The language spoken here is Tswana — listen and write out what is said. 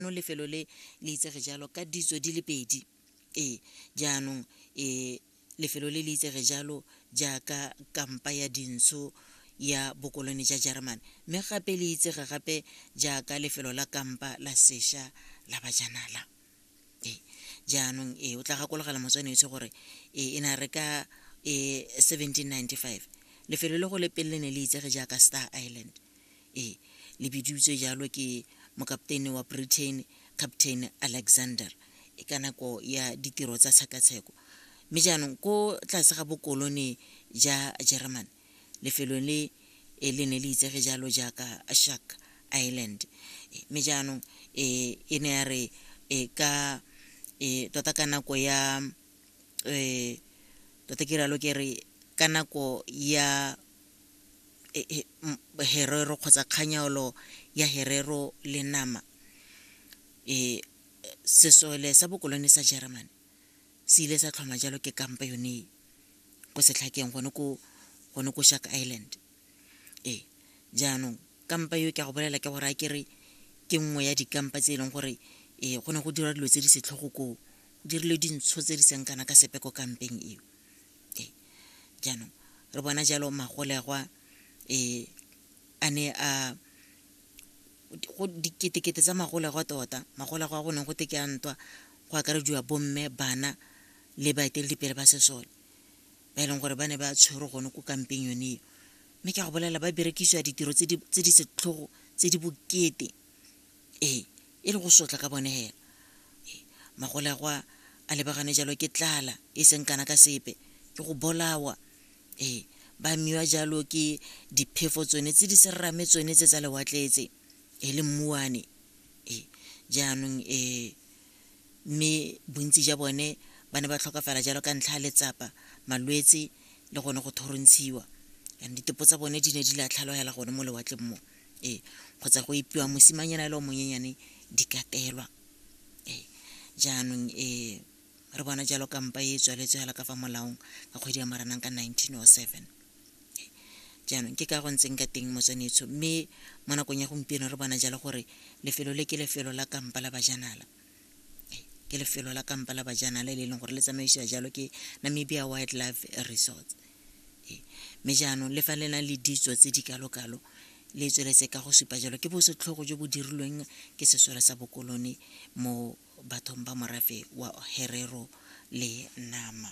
no lefelo le le itsege jalo ka ditso di le pedi ee jaanong um lefelo le le itsege jalo jaaka kampa ya dintsho ya bokolone ja jerman mme gape le itsege gape jaaka lefelo la kampa la sesha la bajanala ee jaanong ee o tla gakologela motswanetse gore ee e na re ka um seventeen ninety five lefelo le go le pele le ne le itsege jaaka star island ee le bidiutswe jalo ke mokapteine wa britain captain alexander e ka nako ya ditiro tsa tshekatsheko mme jaanong ko tlase ga bokolone ja german lefelo le e le ne le itsege jalo jaaka shark island mme jaanong um e ne ya re ka um tota ka nako ya um tota ke rialo ke re ka nako ya e- e- m- herero kgotsa kganyaolo ya herero le nama um sesole sa bokolone sa germany se ile sa tlhoma jalo ke kampa yone e ko setlhakeng gone ko gone ko shark island ee jaanong kampa yo ke a go bolela ke gore a kere ke nngwe ya dikampa tse e leng gore um go ne go dira dilo tse di setlhogo koo dirile dintsho tse di seng kana ka sepe ko kampeng eo ee jaanong re bona jalo magolegwa um a ne a diketekete tsa magolegwa tota magolegwa a go neng go te ke a ntwa go akarediwa bomme bana le baeteledipele ba sesole ba e leng gore ba ne ba tshwere gone ko kampeng yone eo mme ke a go bolela ba berekisiwa ditiro tse di setlhogo tse di bokete ee e le go sotla ka bone hela magole a gwa a lebagane jalo ke tlala e seng kana ka sepe ke go bolawa ee ba miwa jalo ke diphefo tsone tse di serame tsone tse tsa lewatletse e le mmuane ee jaanong ee mme bontsi ja bone ba ne ba tlhokafala jalo ka ntlha ya letsapa malwetse le gone go thorontshiwa and ditepo tsa bone di ne di latlhaloela gone mo lewatleng mo ee kgotsa go epiwa mosimanyana e le o monyenyane di katelwa ee jaanong ee re bona jalo kampa e tswaletswe fela ka fa molaong ka kgwedi ya maranang ka 1907 jaanong ke ka go ntseng ka teng motswanetsho mme mo nakong ya gompieno re bona jalo gore lefelo le ke lefelo la kampa la bajanala ke lefelo la kampa la bajana le le leng gore le tsamaisiwa jalo ke namibia wildlife resorts ee, mme jaanong le fa le na le ditso tse di kalo-kalo le tsweletse ka go supa jalo ke bosetlhogo jo bo dirilweng ke sesole sa bokolone mo bathong ba morafe wa herero le nama